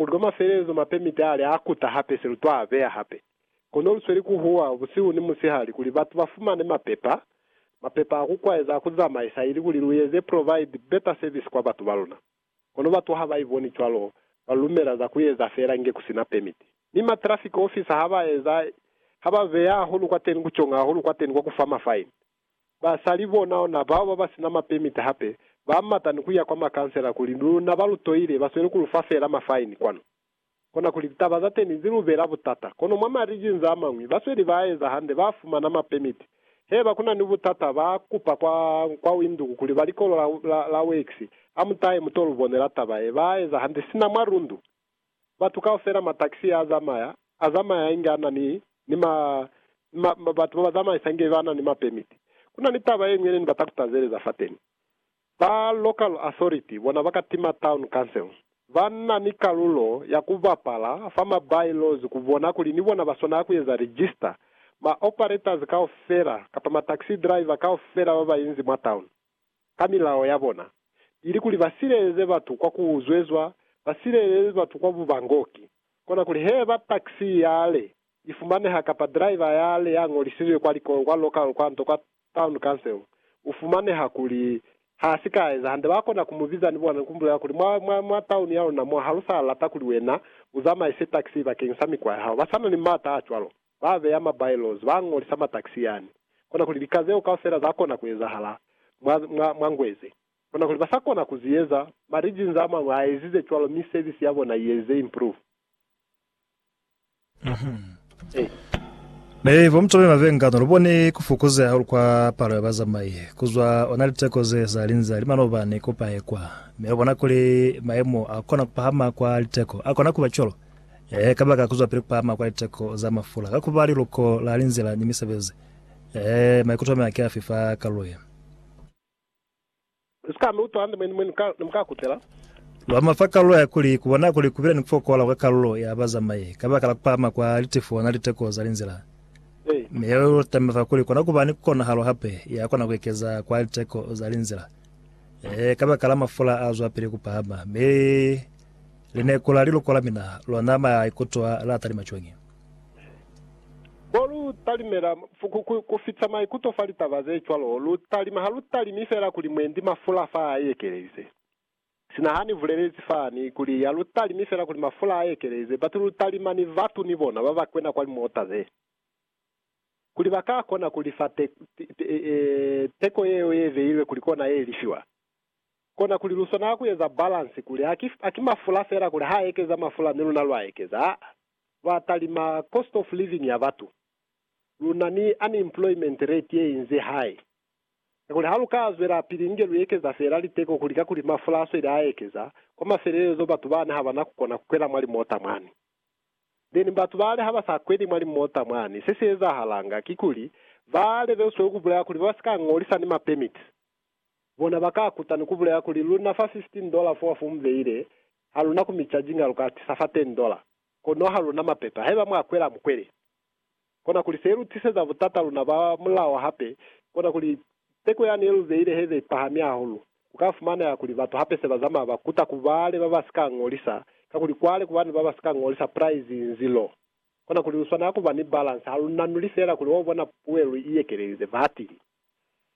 U loma selezo mape mitale a kuta hape se lu twa beya hape. Kono lu sweli ku huwa busihu ni musihali kuli batu ba fumane mapepa, mapepa a ku kwaeza a ku zamaisa ili kuli lu eze provide better service kwa batu ba luna. Kono batu ha ba iboni cwalo, ba lu lumela za ku eza fela inge ku sina permit. Mi ma traffic officer ha ba eza, ha ba beya hahulu kwateni ku conga hahulu kwateni kwa ku fa ma fine. Basali bona ona bao baba sina ma permit hape ba mata ni kuya kwa ma councilor kuli luna ba lu toile ba sweli ku lu fa fela ma fine kwanu. Kona kuli litaba za teni zi lu bela butata kono mwa ma regions a mañwi ba sweli ba eza hande ba fumana ma permit. Heba kuna ni butata ba kupa kwa kwa Windhoek kuli ba likolo la la la works a mutahe muto lu bonela taba ye ba eza hande sina mwa Rundu. Batu kaufela ma taxi a zamaya, a zamaya inge a na ni, ni ma, ni ma, ma, batu ba ba zamaisa inge ba na ni ma permit. Ku na ni taba ye ñwi ye ne ni bata ku tazeleza fateni. Ba local authority bona ba ka tima town council. Ba na ni kalulo ya ku bapala fa ma by laws ku bona kuli ni bona ba swanela ku eza register ma operators kaufela kapa ma taxi driver kaufela ba ba inzi mwa town. ka milao ya bona, ili kuli ba sileleze batu kwa ku zwezwa, ba sileleze batu kwa bubangoki. Kona kuli heba taxi ya le i fumaneha kapa driver ya le ya ñolisizwe kwa likolo kwa local kwanto kwa town council, u fumaneha kuli ha si ka eza hande, ba kona ku mu biza ni bona ni ku mu bulela kuli, Mwa, mwa, mwa town ya luna mo, ha lu sa lata kuli wena u zamaise taxi bakeng sa mikwa ya hao. Ba sa na ni m'ata a cwalo. ba beya ma bailos, ba ngolisa matakisi yani. Kona kuli lika zeo kaufela za kona ku ezahala mwa, mwa, mwa Ngweze. Kona kuli ba sa kona ku zi eza, ma regions a mañwi a ezize cwalo mi service ya bona i ezize improve. Ee. Mi bo mutololi ba vengano, lu bone ku fukuzeha hahulu kwa palo ya bazamai, ku zwa ona liteko ze za linze ali manobani ku pahe kwa. Mi lu bona kuli mayemo a kona ku pahama kwa liteko a kona ku ba cwalo. Ee, kabaka kuzwapili kupahama kwa liteko za mafula ka kuba liluko la linzila ni misebezi. Ee, maikuto amea ki afi fa kalulo ye? Usika mi utwa hande mwenemwene ni mukakutela. Lu ama fa kalulo ya kuli kubona kuli kubile ni kufokola kwa kalulo ya bazamai kabaka la kupahama kwa litifo na liteko za linzila. Mi yeo ilu tama fa kuli kona kuba ni konahalo hape ya kona kuekeza kwa liteko za linzila. Ee, kabakala mafula azwapili kupahama, mi Lineko la liloko la mina, lwa nama ya ikutwa la talima cwañi? Mo lu talimela ku fita maikuto fa litaba ze cwalo, lu talima. Ha lu talimi fela kuli mwendi mafula fa a ekelelize. Sina ha ni bulelezi fani kuli ha lu talimi fela kuli mafula a ekelelize, batu lu talima ni batu ni bona ba ba kwena kwa limota ze, kuli ba ka kona ku lifa teko yeo ye beilwe kuli kona ye lifiwa. Kona kuli lu swanela ku eza balansi kuli ha ki, ha ki mafula fela kuli ha ekeza mafula mi luna lwa ekeza, aa, lwa talima cost of living ya batu. Lu na ni unemployment rate ye inzi hai. Kakuli ha lu ka zwela pili inge lu ekeza fela liteko kuli kakuli mafula a sweli a ekeza, kwa mafelelezo batu bani ha ba na ku kona ku kwela mwa limota mwani. Then batu bale ha ba sa kweli mwa limota mwani, se si ezahalanga kikuli, ba lebelswe ku bulela kuli ba si ka ngolisa ni ma permits. Bona ba ka kuta ni ku bulela kuli, Lu na fa 15 dola fo wa fumbeile, ha lu na ku mi charginga, lu ka tisa fa 10 dola. Kono ha lu na mapepa. Haiba mwa kwela, mu kwele. Kona kuli se lu tiseza butata luna ba mulao hape, kona kuli teko yani ye lu beile he be ipahami hahulu. Ku ka fumaneha kuli batu hape se ba zamaya ba kuta ku bale ba ba si ka ñolisa, kakuli kwale ku ba ni ba ba si ka ñolisa prize inzi lo. Kona kuli lu swanela ku ba ni balance, ha lu nanuli feela kuli wa bona puwelo i yekelelize. Batili.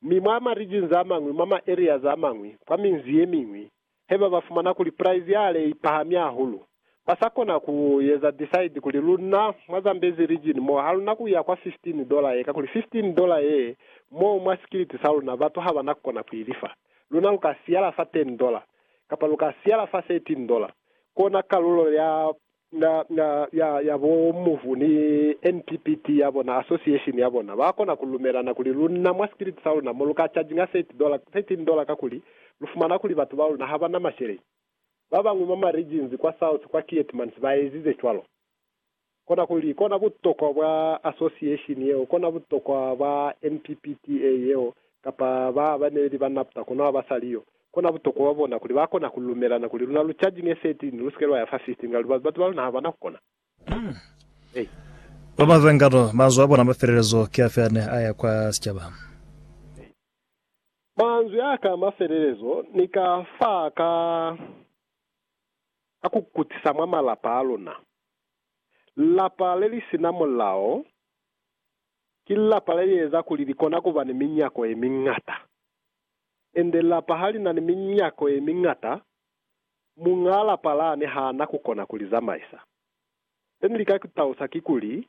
Mi mwa ma regions a mañwi, mwa ma areas a mañwi, kwa minzi ye miñwi, he ba ba fumana kuli price ya ale i pahami hahulu, ba sa kona ku eza decide kuli lunna mwa Zambezi region mo ha luna ku ya kwa 15 dollar ye, kakuli 15 dollar ye, mo mwa sikiliti sa luna batu ha ba na ku kona ku i lifa. Luna lu ka siyala fa 10 dollar, kapa lu ka siyala fa 13 dollar. Kona kalulo ya Na, na, ya, ya bo Mmuvu ni NPPT ya bona, association ya bona, ba kona ku lumelana kuli lunna mwa sikiliti sa luna mo lu ka charginga 30 dollar, 13 dollar kakuli lu fumana kuli batu ba luna ha ba na masheleñi. Ba bañwi mwa ma regions kwa south kwa Keetmansee ba ezize cwalo. Konakuli, kona butokwa bwa association yeo, kona butokwa bwa NPPT-A yeo, kapa ba, ba neli ba NABTA, kono ha ba sa li yo. Kona butokwa bwa bona kuli ba kona ku lumelana kuli luna lu charging e set ni lu sike lwa ya fa 15 nga lubali batu ba luna ha bana ku kona. Hey. Ba ba zwa ngano, manzwi a bona a mafelelezo ki afi ane a ya kwa sicaba? Hey. Manzwi a ka a mafelelezo ni ka fa ka a ku kutisa mwa malapa a luna. Lapa le li sina mulao ki lapa le li eza kuli li kona ku ba ni minyako ye miñata. Ende lapa ha li na ni minyako ye miñata, muñaa lapa la ne ha na ku kona ku li zamaisa. Se ni lika ku talusa kikuli,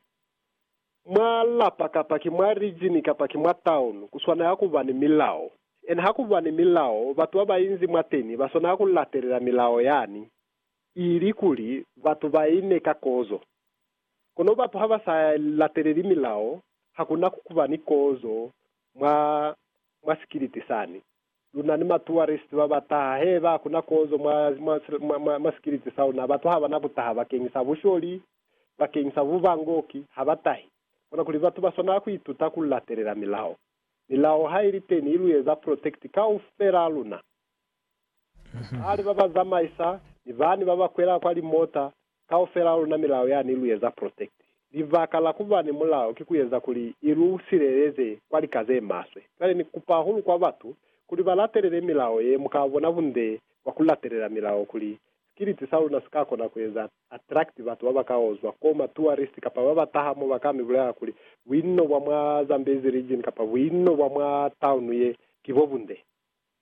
mwa lapa kapa ki mwa rijini kapa ki mwa taunu, ku swanela ku ba ni milao. Ene ha ku ba ni milao, batu ba ba inzi mwateni ba swanela ku latelela milao yani, ili kuli batu ba ine ka kozo. Kono batu ha ba sa lateleli milao, ha ku na ku ba ni kozo mwa mwa sikiliti sani. Luna ni matuwarist ba ba taha he ba ku na kozo mwa, mwa, mwa, mwa, mwa sikiliti sa luna. Batu ha ba na ku taha bakeñisa busholi, bakeñisa bubangoki, ha ba tahi. Konakuli batu ba swanela ku ituta ku latelela milao. Milao ha i li teni i lu eza protect kaufelaa luna. Bali ba ba zamaisa, ni bani ba ba kwela kwa limota, Kaufela luna milao yani lu eza protect. Libaka la kuba ni mulao ki kueza kuli ilu sileleze kwa lika zemaswe. Cwale ni kupa hahulu kwa batu kuli ba latelele milao ye, muka bona bunde bwa ku latelela milao kuli skiliti sa luna sika kona kueza attract batu baba ka ozwa ko, ma tourist kapa baba taha mo baka mi bulela kuli buinno bwa mwa Zambezi region kapa buinno bwa mwa town ye ki bo bunde.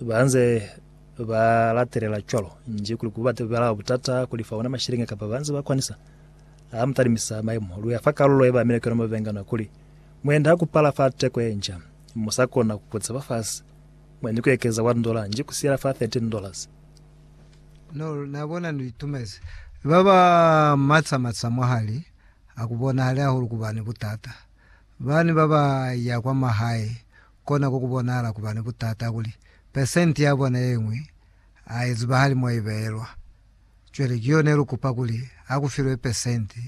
ba nze ba latelela cwalo nji kuli ku bate bala butata kuli fa ona mashilingi kapa ba nze ba kwanisa ha mu talimisa maimo lu ya fa kalulo ye ba amile kuyona mabengano kuli muende ha ku pala fa teko ye nca mu sa kona ku kutisa fa fasi mwa ni ku ekeza one dollar nji ku siyela fa 13 dollars No, na bona ni itumezi. Ba ba matsa matsa mwahali ha ku bonahali hahulu ku ba ni butata. Bani ba ba ya kwa mahae kona ku ku bonahala ku ba ni butata kuli pesenti ya bona ye ñwi ha i zibahali mo i beelwa. Cwale ki yo ne lu kupa kuli ha ku filwe pesenti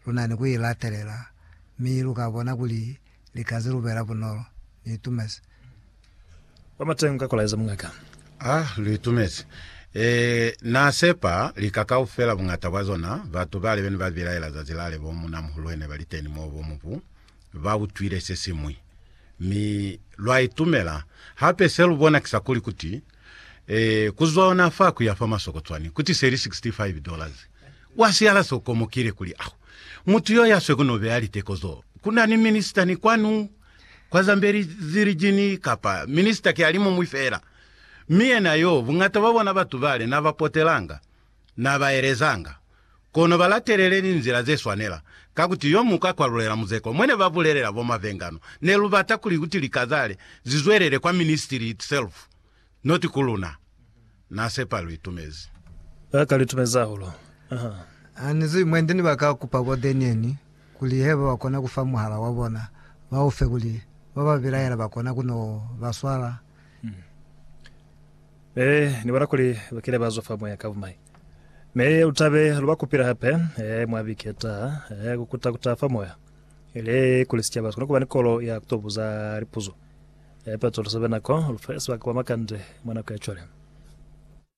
lu na ni ku i latelela, mi lu ka bona kuli li ka ze lubela bunolo. Ni itumezi. Kwa mateng ka kolaeza mungaka. Ha lu itumezi. Ee, na sepa lika kaufela, buñata bwa zona, batu bale be ne ba bilaela zazi lale bo munamuhulu he ne ba li teni moo bo mubu. ba utwile se siñwi, mi lwa itumela. Hape se lu bona ki sa kuli, kuti, ee, ku zwa ona fa ku ya fa masoko cwani, kuti se li sixty-five dollars. Wa siyala se u komokile, kuli, Au, mutu yo ya swe ku no beya liteko zo, ku na ni minister ni kwanu, kwa Zambezi Region, kapa minister ki alimuñwi fela, mi yena yo, buñata bwa bona batu bale na ba potelanga. Na ba elezanga, Kono ba latelele linzila ze swanela, ka kuti yo mu ka kwalulela muzeko. Mwe ne ba bulelela bo Mavengano, Ne lu bata kuli kuti likazale zi zwelele kwa ministry itself, not ku luna. Na sepa lu itumezi. Ba ka lu itumezi hahulu. Aha. Ha ni zwi mwe ndi ni ba ka kupa bo Denian kuli heba ba kona ku fa muhala wa bona, ba u fe kuli ba ba bilaela ba kona ku no ba swala. Me Ni bona kuli ba kile ba zwa fa Moya ka bumai. Mi lu tabe lu ba kupile hape, ee, mwa biki ye taha, ee, ku kuta ku taha fa Moya, ili kuli sicaba si kone kuba ni kolo ya ku to buza lipuzo. Ee, Petro, lu sebe nako, lu fe sebaka kwa makande mwa nako ya cwale.